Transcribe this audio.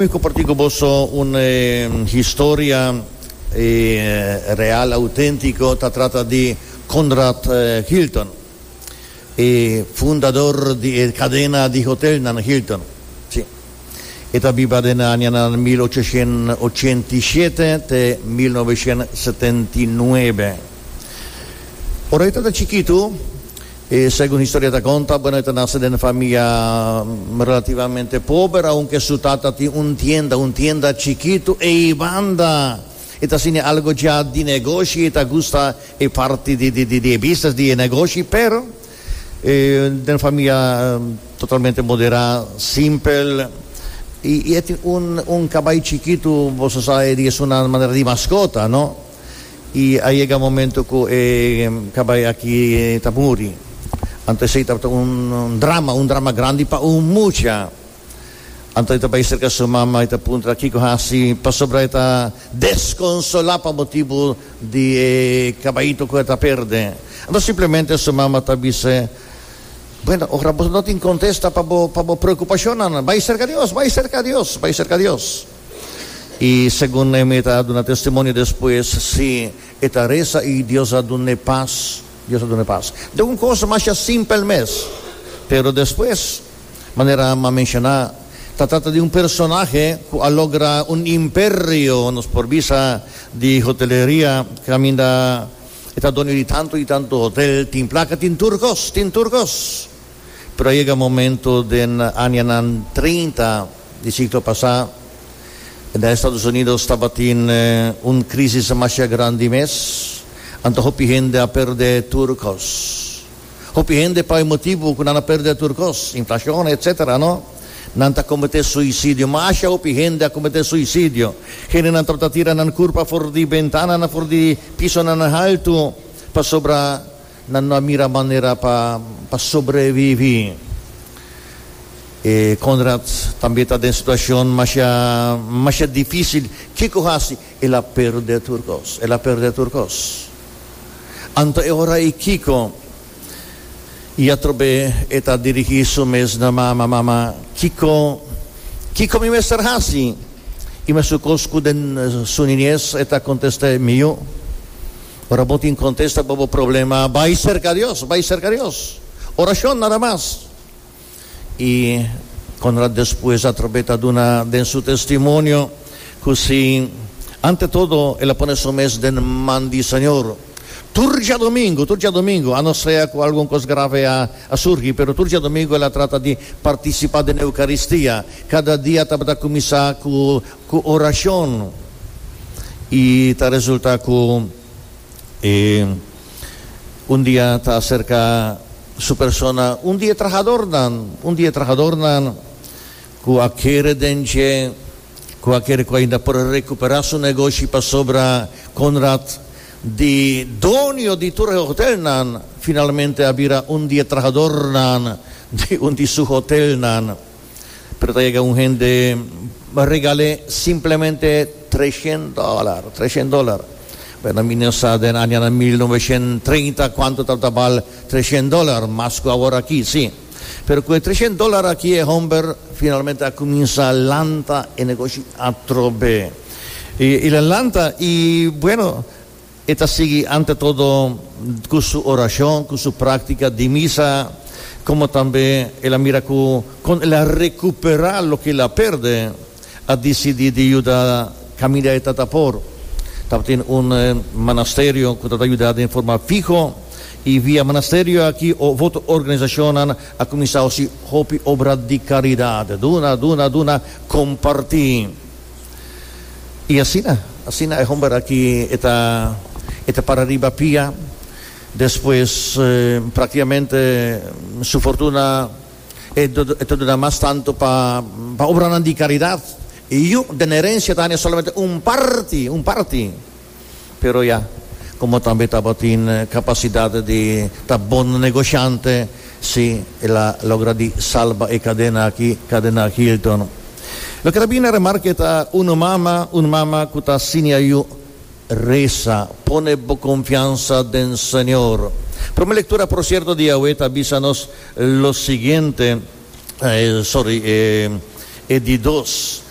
Wi comparti cu boso un historia real, autentico, ta trata di Conrad Hilton, e fundador di e cadena di hotelnan Hilton. Si. E ta biba den e añanan mil ochocientos ochenta i shete te mil novecientos setenta i nuebe. Ora e ta ta chikitu, E segun historieta conta, bueno, e ta nace den famia relativamente pober, aunke su tata tin un tienda, un tienda chikito, eibanda e ta sini algo dja di negoshi, e ta gusta e parti di di di e business, di e negoshi, pero e den famia totalmente modera, simpel, y y e tin un un cabai chikito, boso sa e di esun na manera di mascota, no. y a yega momento cu e cabay aki ta muri. Anto esey tabata un drama, un drama grandi pa un mucha. Anto e ta bay cerca su mama y ta puntra kico haci pasobra e ta desconsola pa motibo di e cabayito cu e ta perde. Anto simplemente su mama ta bis'e, Bueno, ora bo no tin contesta pa bo preocupacionnan, bay cerca Dios, bay cerca Dios, bay cerca Dios. I segun Nehemia a duna testimonio despues, si e ta resa i Dios a duna e pas, Dios a duna e pas. Dje un kos masha simpel mes, pero despues, manera a menshoná, ta trata di un personahe ku a logra un imperio, nos por bisa, di hoteleria, kaminda e ta doño di tantu i tantu hotel, tin plaka, tin tur kos, tin tur kos. Pero a yega momento den añanan treinta di siglo pasá, na Estados Unidos tabatin un krísis mashá grandi mes, anto hopi hende a perdé tur kos. Hopi hende pa e motibu ku nan a perdé tur kos, inflashon, etsétera, no, nan ta kometé suisidio. Mashá hopi hende a kometé suisidio. Hendenan tabata tira nan kurpa for di bentananan, for di pisonan haltu, pasobra. Nan no a mira manera pa sobreviví. E Konrad tambe ta den situacion masha masha difícil. Kico haci? El a perde tur cos. El a perde tur cos. Anto e ora ei Kico i atrobe e ta dirigí su mes na mama, Mama, kico kico mi mester haci? I mesun cos cu den su niñez e ta contest'é, Miyu, Ora bo tin contesta pa bo problema, bay cerca Dios, bay cerca Dios. Oracion nada mas. Y Conrad despues atrobe ta duna den su testimonio cu si ante todo el a pone su mes den man di Señor. Tur diadomingo, tur diadomingo, a no sea cu algun cos grave a a surgi, pero tur diadomingo el a trata di participa den Eucaristia. Cada dia tabata cuminsa cu. Ku orashon i ta resultá ku e un di a ta aserká su persona. Un di e trahadornan, un di e trahadornan ku a kere den dje, ku a kere ku ainda por rekuperá su negoshi pasobra Konrad di donio di tur e hotelnan finalmente a bira un di e trahadornan di un di su hotelnan. Pero ta yega un hende regal'é simplemente treshent dòlar, treshent dòlar. Bueno, mi no sa den añanan mil noveshent treinta kuantu tabata bal treshent dòlar, mas ku awor aki, sí. Pero ku e treshent dòlar aki e hòmber finalmente a kuminsá lanta e negoshi atrobe. I el a lanta i, bueno, E ta sigui ante todo cu su oracion, cu su practica di misa, como tambe el a mira cu con el a recupera loke el a perde, a dicidi di yuda caminda e tata por. Tabatin un manasterio cu ta ta yuda den forma fiho y via manasterio aki o otro organizacionnan a cuminsa hoci hopi obra di caridad, duna, duna, duna, comparti. Y asina, asina e homber aki e ta, e ta para riba pia, despues practicamente su fortuna e ta duna mas tanto pa obranan di caridad. Y yu den herencia ta haña solamente un parti, un parti. Pero ya, komo tambe tabatin kapasidat di ta bon negoshiante, si, el a logra di salba e kadena aki, kadena Hilton. Loke ta bini na remarka e ta un mama, un mama ku ta siña yu, Resa, pone bo konfiansa den Señor. Promé lektura, por sierto, di Yahweh ta bisa nos lo siguiente, sòri, e di dos.